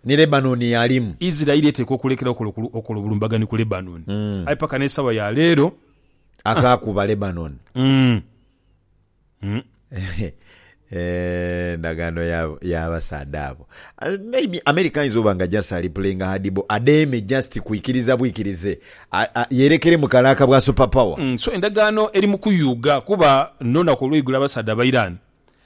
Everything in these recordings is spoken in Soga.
Ni Lebanoni y'alimu. Isiraeli eteekwa okulekeragho okola obulumbaganhi ku Lebanoni. Aye paka n'esaawa ya leero. Akaakuba Lebanoni. Eeh ndagaano y'abasaadha abo. Maybe America ayinza oba nga just ali playinga hard ball adheeme just kwikiriza bwikirize yeerekere mu kalaaka bwa super power. So endagaano eri mu kuyuuga kuba n'olunaku olweigulo abasaadha aba Iran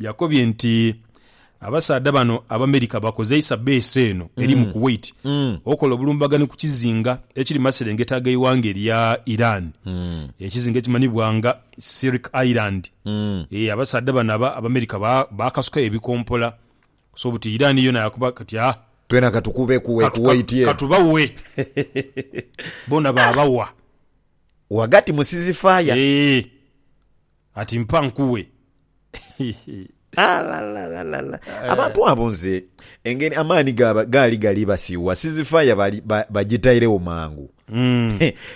Yakobye nti abasaadha bano Abamerika bakozeisa beesi eno eri mu Kuwait okola obulumbaganhi ku kizinga ekiri maserengeta g'eighanga erya Iran. Ekizinga ekimanhibwa nga Sirk Island. Ee, abasaadha bano aba Abamerika ba- baakasukayo ebikompola so buti Iran yona yakuba kati ah, Twena katukube ku katu- Kuwait katu- eno. katubawe. Bona baabawa. Ghagati mu sizifaya. Ee. Ati mpa nkuwe. Alalalalala. Abantu abo nze engeri amaani gaali gali basiiwa, sizifaya bagitairegho mangu.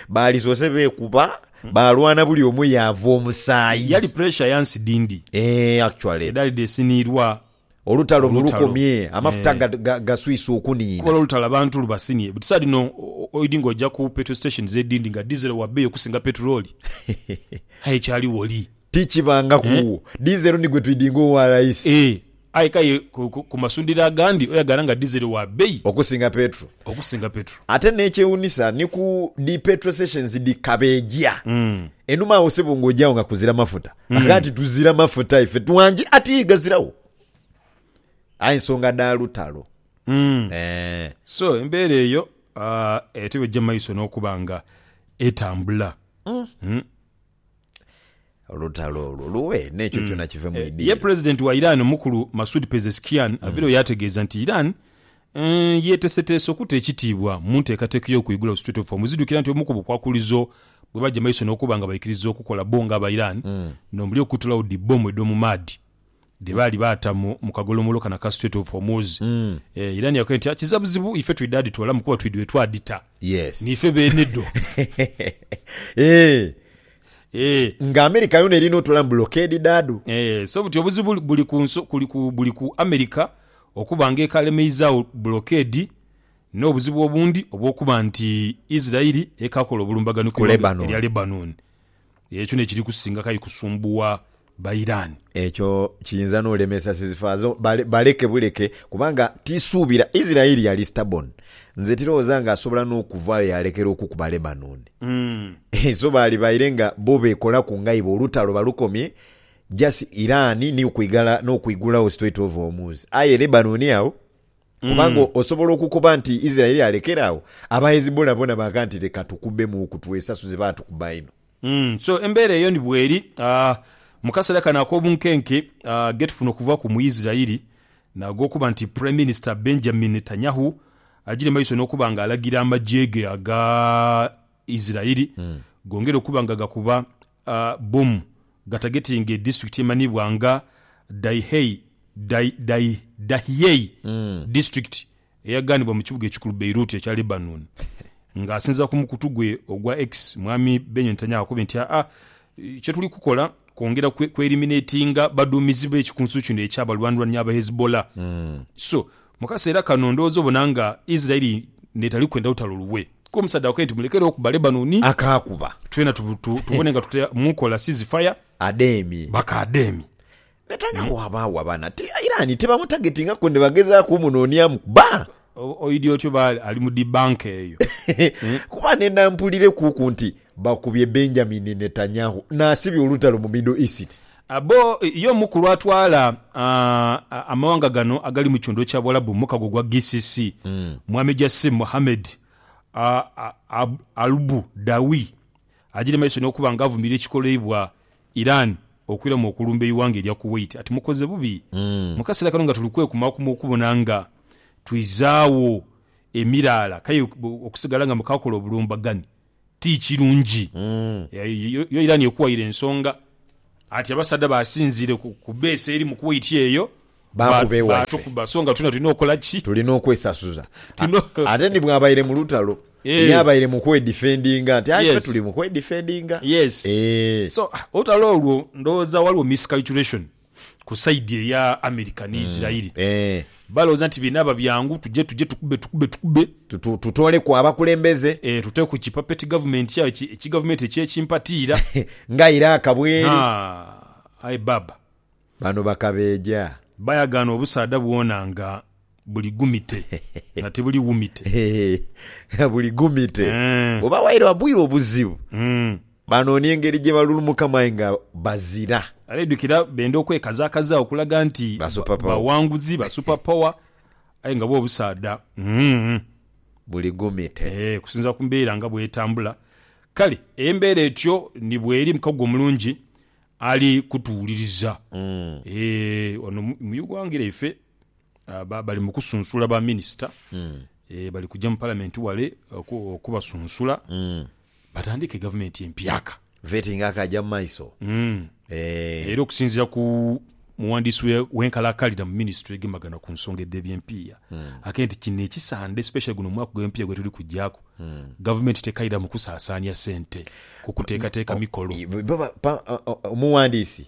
Baalisoose beekuba, baalwana buli omu yaava omusaayi. Yali pressure ya nsi dhindi. Eeh actually. Edhali dheesiniirwa. Olutalo luno Olutalo. lukomye, amafuta Eh. ga- ga- gaswise okuniina. Kubala olutalo abantu lubasinie but saha dhino o- oidhi nga oja ku petrol stations edindi nga diesel wa beeyi okusinga petulooli aye ekyali woli Tikibangaku. Eh. Diesel ni gwe twidinga owa layisi Eh, aye k'aye ku- ku- ku masundhiro agandi oyagala nga diesel wa beeyi okusinga petro. okusinga petulo Ate n'ekyewunisa ni ku dhi petrol stations dhi kabeeja. Enhuma agho sebo ng'oja agho nga kuzira mafuta. Agha nti tuzira mafuta ife twangi ati ghaziragho aye nsonga dha lutalo Mm. Eh, so embeera eyo ah, ate bwejja maiso n'okuba nga etambula Mm. olutalo olwo luwe n'ekyo kyona kive mu ye idiiro pulezidenti wa iran omukulu masud pezeskian avirayo yategeeza nti iran Yeeteeseteese okuta ekitiibwa mu nteekateeka ey'okwigula ku Strait of Hormuz. Idhukira nti omu ku bukwakulizo bwe baja mu maiso n'okuba nga baikiriza okukola bo ng'aba Iran nh'omuli okutulagho dhi bbomu edh'omu maadhi dhe baali baata mu kagolomolo kano aka Strait of Hormuz. Iran yakoya nti, Kiza buzibu ife twidha dhitoolamu kuba twidhwe twadhita niife beene dho. Nga America yoona erina otoolamu bulokeedi dhaadho. So buti obuzibu buli ku America okuba ng'ekalemeizagho bulokeedi n'obuzibu obundi obw'okuba nti Isiraeli ekaakola obulumbaganhi ku ighanga erya Lebanoni. Ekyo n'ekiri kusinga kai kusumbuwa Bairani. Ekyo kiyinza n'olemesa Sizifaazi baleke buleke kubanga tisuubira Isiraeli yali stubborn. Nze tirowooza ng'asobola n'okuvaayo yaalekera okukuba Lebanoni. So baali baire nga bo beekolaku nga ibo olutalo balukomye. Just Iran niyo kwigala n'okwigulawo Strait of Hormuz, aye Lebanon agho? Kubanga osobola okukoba nti Israel alekere agho, aba Hezbollah bona baaga nti leka tukubemuuku twesasuze baatukuba inho. So embeera eyo ni bweri mu kaseera kano ak'obunkenke getufuna okuva ku Muisraeli n'ag'okuba nti Prime Minister Benjamin Netanyahu agira emaiso n'okuba nga alagira amagye ge aga Israel gongere okuba nga gakuba A Bum gatagetiinga edisiturikiti emanhiibwa nga Dahiei, Dahi, Dahiei disiturikiti eyagaanibwa mu kibuga ekikulu Beirut ekya Lebanon. Nga asinziira ku mukutu gwe ogwa X, Mwami Benyo Netanyahu akobye nti, Aa, kye tuli kukola kwongera kwe, kweeriminetinga baduumizi be kikunsu kino eky'abalwanirani aba Hezbollah. So, Mu kaseera kano ndowooza obona nga Isiraeli n'etali kwenda lutalo luwe. Ku omusaadha akoye nti, Mulekere okuba Lebanoni. Akaakuba. Twena tubone nga tuta mu kola sizifaya. Ademi. Bakaademi. Betaaga waabagho abaana. Ti Iran tebamutargetingaku nde bagezaaku omunooniamu kuba. Oidhi otyo oba ali mu dhi banka eyo. Kuba nenda mpulirekuuku nti Bakubye Benjamin Netanyahu n'asibya olutalo mu Middle East. Abo ye omukulu atwala amawanga gano agali mu kitundu ekya Buwalabu mu mukago gwa GCC, Mwami Jassim Mohammed Albudawi agire maiso n'okuba nga avumirira ekikoleibwa Iran okwiramu okulumba eighanga erya Kuwait ati mukoze bubi mu kaseera kano nga tuli kwekumakuma okubona nga twizaagho emiraala kaye okusigala nga mukakola obulumbaganhi. ti kirungi. Yo Iran ekuwaire ensonga ati abasaadha basinziire ku base eri mu Kuwait eyo baatukuba so nga twena tulina okola ki? Tulina okwesasuza. Ate ni bwabaire mu lutalo ye abaire mu kwedifendinga nti aye ife tuli mu kwedifendinga. Yes. So olutalo olwo ndowooza waliwo miscalculation. ku side eya America ni Israel balowooza nti binaaba byangu tuje tuje tukube tukube tukube, tutooleku abakulembeze, ee tuteeku ki puppet government ayo ki ki government ekye kimpatiira nga Iraq bweri, haa aye baaba. Bano bakabeeja. Bayagaana obusaadha bwona nga buli gumite nga tibuli wumite. Hee nga buli gumite. Eeh. Oba waire wabwire obuzibu. Umm. Baanoonia engeri gye balulumukamu aye nga bazira. Abeidhukira benda okwekazakaza okulaga nti bawanguzi, ba super power aye nga bwo obusaadha umm buli gumite. Eeh kusinziira ku mbeera nga bw'etambula. Kale embeera etyo ni bweri mukago omulungi ali kutuwuliriza. Eeh ono mu Ugwanga lyaife. Bali mu kusunsula ba minisita, bali kuja mu palamenti wale okubasunsula batandike gavumenti empyaka. Vetting akaja mu maiso. Era okusinzira ku muwandiisi w'enkalakalira mu minisitule egemagana ku nsonga edh'ebyempiiya akee nti kino ekisande especially guno omwaka ogw'empiiya gwetuli kujaaku gavumenti tekaira mu kusaasaania sente ku kuteekateeka mikolo. Omuwandiisi.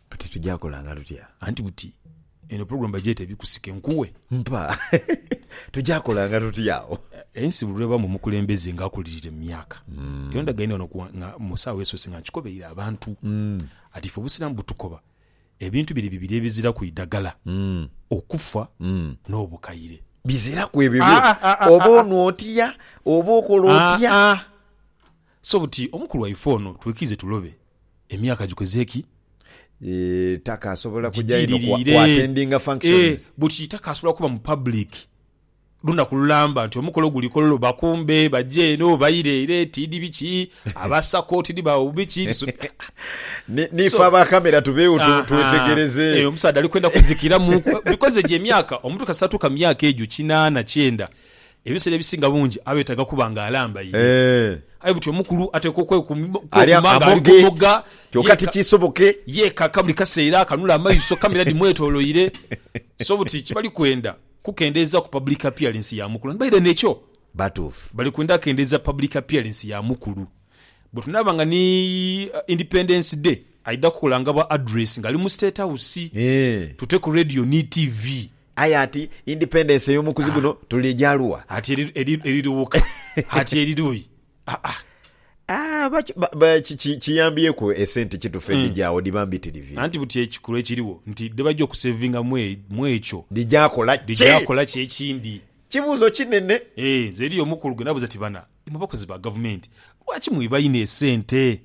Kati tuja kolanga tutya? Anti buti eno program bagyete bikusike nkuwe. Mpa. Tuja kolanga tutya agho? Ensi buli lwebaamu omukulembeze nga akulirire mu myaka, hmm. era ndagaine wano nga mu saawa esoose nga nkikobeire abantu hmm. ati ife obusiraamu butukoba ebintu biri bibiri ebiziraku idagala, hmm. okufa n'obukaire. Biziraku ebyo ah, ah, ah, oba onwa otya oba okola otya. So buti omukulu waife ono twikirize tulobe emyaka gikoze ki? Eeh Taka asobola kuja inho ku Gidhirire. attendinga Eeh functions. buti Taka asobola kuba mu public lunaku lulamba nti omukolo guli kololo bakumbe baje eno baire ere tidhi biki abasako tidhi ba biki tuso Ni, ni So, fe aba camera tubeegho tu, ahaa, twetegereze. eeh omusaadha ali kwenda kuzikiramu ku, because egyo emyaka omuntu kasita atuuka mu myaka egyo kinaana kyenda Ebiseera ebisinga bungi abeetaaga kuba ng'alambaire. Aye buti omukulu ateekwa okwekuuma ng'alimogga yeekaka buli kaseera, akanula amaiso kamera dhimwetoloire. So buti kyebali kwenda kukendeezaaku public appearance ya mukulu. And by then ekyo bali kwenda kendeeza public appearance ya mukulu. Bwetunaaba nga ni Independence Day aidha kukola nga bwa address ng'ali mu State House, tute ku radio ni TV. Aye ati independence ey'omukuzi guno tuligya lugha? Ati erirughuka? Ati eriruyi? Aa. Aa, kiyambyeku esente ki tufendi gyawo dhiba mbitirivi? Anti buti ekikulu ekirigho nti dhebagya okusevinga mu ekyo dhigya kola ki? Dhigya kola ki ekindi? Kibuuzo kinene. Eeh, nze eriyo omukulu gwe nabuuza ati bana imwe bakozi ba gavumenti lwaki mwiba inho esente?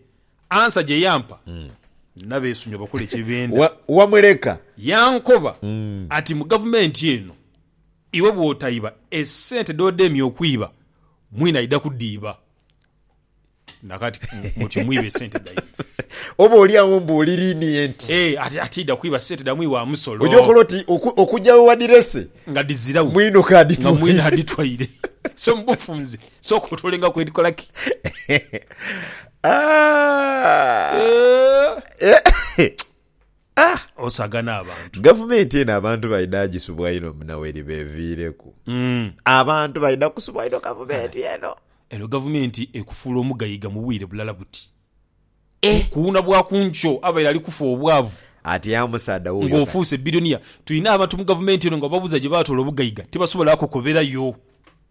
Ansa gye yampa nabeesunga bakola kye benda. Wa, wamuleka. Yankoba ati, Mu gavumenti eno, iwe bw'otaiba, esente dh'odemya okwiba, mwine aidha kudhiiba. Na kati, mutyo mwiba esente dhaimwe. Oboolyawo mbuulirinie nti. Ee, ati, ati aidha kwiba sente dha mwiwa musolo. Oja okola oti oku, okugya we wadhirese. Nga dhizirawo. Mwino k'adhitwaire. Nga mwine adhitwaire. So mu bufunze, sooka otoole nga kwedhikolaki. Ah! Osaga n'abantu. Gavumenti eno abantu baidha dhagisubwa inho muna weriba eviireku. Mm. Abantu baidha kusubwa inho gavumenti eno. Eno gavumenti ekufuula omugaiga mu bwire bulala buti. Eh! Kuwuuna bwa ku nkyo abaire ali kufa obwavu Atyaa omusaadha wuuyo kati. ng'ofuuse biliyoniya. Tulina abantu mu gavumenti eno nga obabuuza gye baatoola obugaiga tibasobola kukubirayo.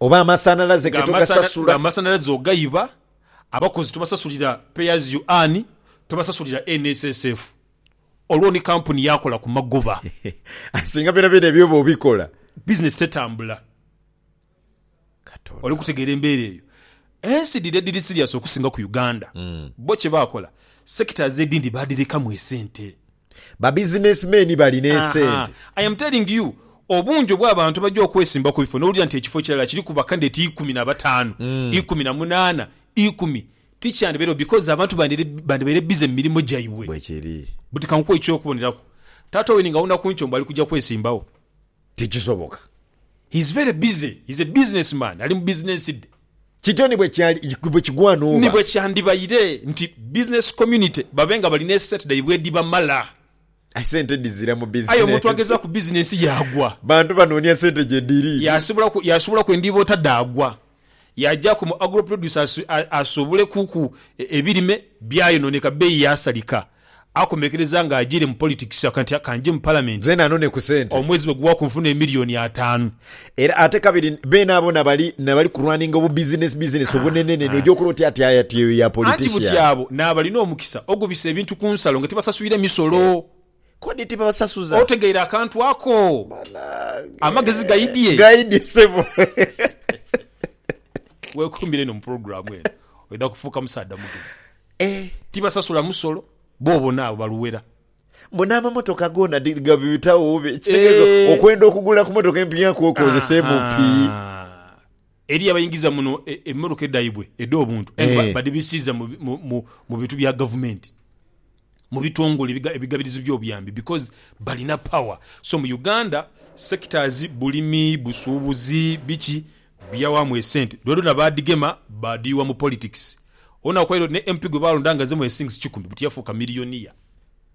oba amasanhalaze ge togasasula. Nga amasanhalaze ogaiba, abakozi tobasasulira Pay as you earn, tobasasulira NSSF, olwo ni kampuni yakola ku magoba. Aye singa byonabyona ebyo oba obikola. Bizinesi tetambula. Oli kutegeera embeera eyo? Ensi dhiri edhiri siriyasi okusinga ku Uganda. Bo kye baakola, sectors edhindi baadhirekamu esente. Ba business men bali n'esente. Ahaa, I am telling you, obungi obw'abantu abagya okwesimba ku bifo n'owulira nti ekifo kirala kiri ku bakandidate ikumi na bataanu, ikumi na munaana, ikumi, tikyandibairagho because abantu bandibaire busy mu mirimo gyaibwe. Bwekiri. But kankuwe eky'okuboneraku, Taata Owen nga awunaku ntyo mbu ali kugya kwesimbawo. Tikisoboka. He is very busy. He is a business man. Ali mu business dhe. Kityo ni bwekigwana oba. Ni bwekyandibaire nti business community babe nga bali n'esente dhaibwe edhibamala. Aye sente dhizira mu business. Aye omuntu ageza ku business yaagwa. Bantu banoonia sente gyedhiri. Yaasibulaku, yaasibulaku endhiiba ota dhaagwa. yaajaku mu Agro Producer asuubule kuku ebirime byayonooneka bbeeyi yaasalika. Akomekereza nga ajiire mu politics akoba nti kanjje mu Palamenti omwezi bwe guwaku nfune emiliyoni ataanu. Era ate kabiri beenaboona bali nabali kurwaninga obubizinesi bizinesi obunenenene oja okola otya ati aye ati eyo ya politician. Anti buti abo n'abalina omukisa ogubisa ebintu ku nsalo nga tibasasulire misolo. Kodi tibabasasuza? Otegeire akantu ako? Banange. Amagezi gaidhie. Gaidhie sebo. Weekuumire eno mu pulogulaamu eno, oidha kufuuka musaadha mugezi. Eh. Tibasasula musolo, bo bona abo baluwera. Mbu n'amamotoka goona di, gabibitagho bubi. Ekitegeezo Eh. okwenda okugula ku motoka empya kwokozesa emupii. Ahaa. Eriyo abaingiza muno emmotoka dhaibwe edh'obuntu aye nga badhibisiiza mu bintu bya gavumenti, mu bitongole ebigabirizi by'obuyambi because balina power. So mu Uganda sectors, bulimi, busuubuzi, biki, byawaamu esente dhonadhona baadhigema baadhiyugha mu politics. Onaku eidho ni MP gwe baalonda nga azze mu earthings kikumi buti yafuuka millionaire.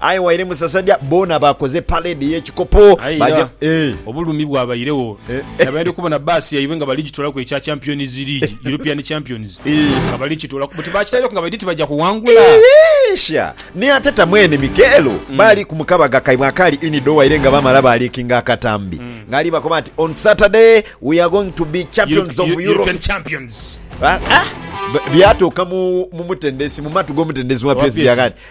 Aye waire musasadha boona bakoze parade yekikopo baja eeh. Obulumi bwabairegho nabaidha okubona bbaasi yaibwe nga bali gitolaku ekya Champions League, European Champions, nga bali kitolaku buti bakitaireku nga baidhi ti baja kuwangula. Sha! Ni ate ta mwene Mikeelo baali ku mukabaga kaibwe akaali Unido waire nga baamala baaliikinga akatambi ng'ali bakoba nti, On Saturday we are going to be champions of Europe. European Champions. Byatuuka mu mutendesi, mu matu g'omutendesi wa PSG akaati.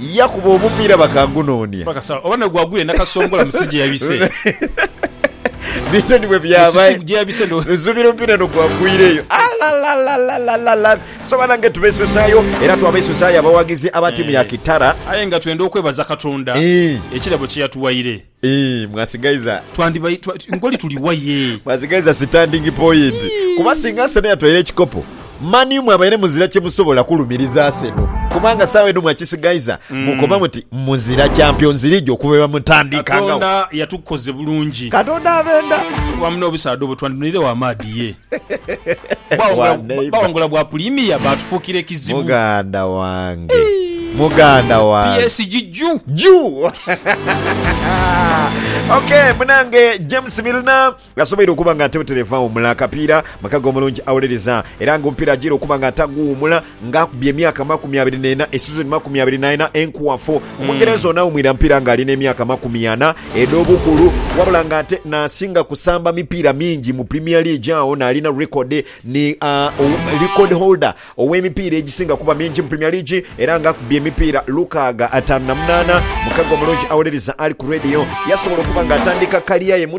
Yakuba omupiira bakagunoonia. Bakasagho oba nagwo agwire nakasongola mu si gyeyabise. Bityo ni bwe byabaire. Mu si gyeyabise ndo. Nsubira omupiira no gwagwireyo. Alalalalala! So banange tubesusayo era twabesusayo abawagizi aba tiimu ya Kitara. Aye nga twenda okwebaza Katonda ekirabo kyeyatuwaire. Eeh mwasigaiza. Twandibai twa nkoli tuli wa ye. Mwasigaiza sitandingi poyinti kuba singa Arsenal yatwaire ekikopo, Man U mwabaire muzira kyemusobola kulumiriza Arsenal kubanga sawa eno mwakisigaiza mukoba muti muzira Champions League okuva bwemutandikangagho. Katonda yatukoze bulungi. Katonda abenda. Kuba mune obusaadha obwo twandinweiregho amaadhi ye. Bawangula bwa pulimiya baatufuukira ekizibu. Muganda wange, muganda wange. PSG juu. Juu! ok munange James Milner asoboire okuba nga atebuterevu awumula akapiira makaga omulungi awuliriza era nga omupiira ajiire okuba nga ataguwumula Ng'akubye emyaka amakumi abiri n'ena, esizoni makumi abiri naena enkwafu, Omungereza ono awumwira mpiira ng'ali n'emyaka amakumi ana edh'obukulu wabula ng'ate n'asinga kusamba mipiira mingi mu Premier League agho n'alina rekodi ni record holder ow'emipiira egisinga okuba mingi mu Premier League era ng'akubye emipiira lukaaga ataanu na munaana. Mukago omulungi awuliriza ali ku leediyo yasobola okuba ng'atandika kaliya ye mu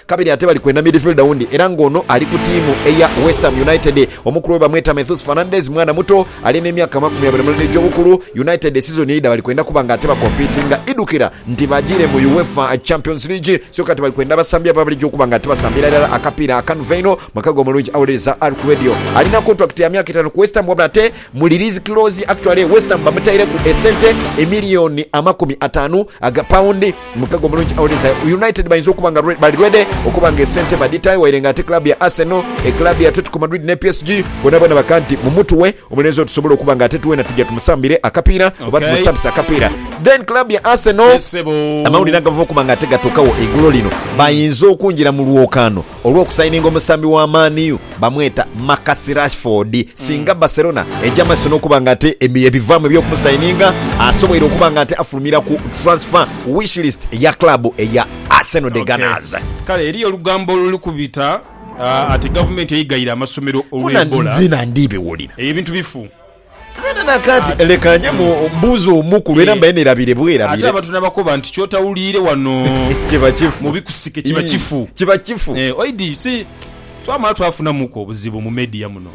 Kabiri ate bali kwenda midfielder wundi era nga ono ali ku tiimu eya West Ham United. Omukulu we bamweta Methus Fernandes, mwana muto ali n'emyaka amakumi abiri mulena egy'obukulu. United esizoni eidha bali kwenda kuba nga ate bakompitinga idhukira nti bajiire mu Uefa Champions League so kati bali kwenda abasambi abo abaligya okuba nga ate basambira irala akapiira akanva einho mu kago omulungi. Awuliriza Ark Radio alina kontulakiti ya myaka etaanu ku West Ham wabula ate Muli Liz Close actually West Ham bamutaireku esente emiliyoni amakumi ataanu aga pawundi. Mu mukago omulungi awuliza United bayinza okuba nga bali ready okuba nga esente badhitayo waire nga ate club ya Arsenal, club ya Atletico Madrid ne PSG bonaboona baka nti mumutuwe omulenzi oyo tusobole okuba nga ate twena tuja tumusambire akapiira oba Okay. tumusambise akapiira. Then club ya Arsenal Yes, sebo. amawulire agava okuba nga ate gatuukawo eigulo lino bayinza okungira mu lwokaano olw'okusayininga omusambi wa Man U bamweta Marcus Rashford. Singa Barcelona eja mu maiso n'okuba nga ate ebivaamu eby'okumusayininga, asoboire okuba nga ate afulumira ku transfer wishlist ya club eya Arsenal The Gunners. Kale eriyo olugambo oluli kubita ati gavumenti eyigaire amasomero olw'Ebola. Eyo ebintu bifu. Zena na kati leka nje mu buuze omukulu era mbaire nerabire bwerabire. Ate abantu nabakoba nti kyotawuliire wano kiba kifu. Mu bikusike kiba kifu. Ii kiba kifu. Eeh oidi you see twamala twafunamu ku obuzibu mu media muno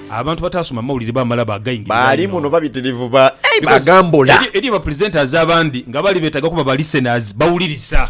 abantu batasoma mawulire bamala bagaingirirwa inho. Baali muno babitirivu ba eeh bagambula. Because eriyo ba presenters abandi nga bali betaga kuba ba listeners bawuliriza.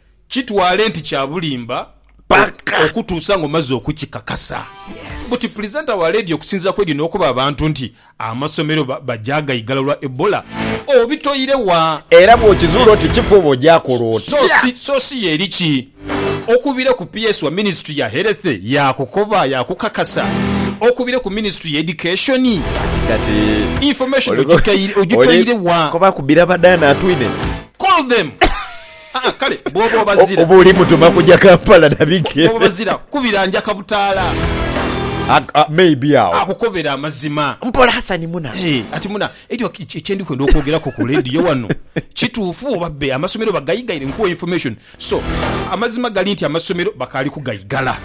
Kitwale nti kya bulimba okutuusa ng'omaze okukikakasa. Buti puliizenta wa leediyo okusinziira kw'edyo n'okoba abantu nti amasomero bagyaagaigala lwa Ebola, obitoire wa? Era bw'okizuula oti kifu oba ogyaakola otya? Soosi ye eri ki? Okubire ku PS wa minisitule ya Health yaakukoba, yaakukakasa. Okubire ku minisitule ya Education. Information ogitoire wa? Call them! Haa kale bwoba obazira. Oba oli mutuma kuja Kampala na bigere. Bwoba obazira kubira njaka butaala. May be agho. Akukobere amazima. Mpola Hassan muna. Ati muna ekyo kyendi kwenda okwogeraku ku radio wano kituufu oba bbe amasomero bagaigaire nkuwe information so amazima gali nti amasomero bakaali kugaigala.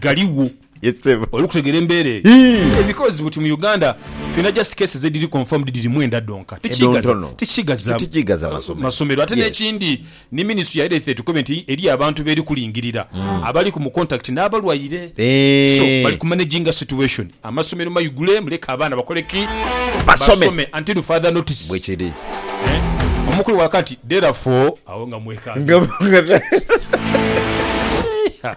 Galigho. Yes sebo. Oli kutegera embera eyo? Ii. Because buti mu Uganda tulina just cases ediri confirmed dhiri mwenda dhonka. Edho ntono. Tikighaza Titighaza masomero. masomero. Ate Yes. nekindi ni ministry ya health etukobe nti eriyo abantu beri kulingirira abaliku mu contact nabalwaire. So bali Eeh. ku managinga situation. Amasomero maigule muleke abaana bakole ki? Basome. Basome until further notice. Bwekiri. Eh? Omukulu waka nti therefore awo nga mwekanga. Nga nga. Eeiha.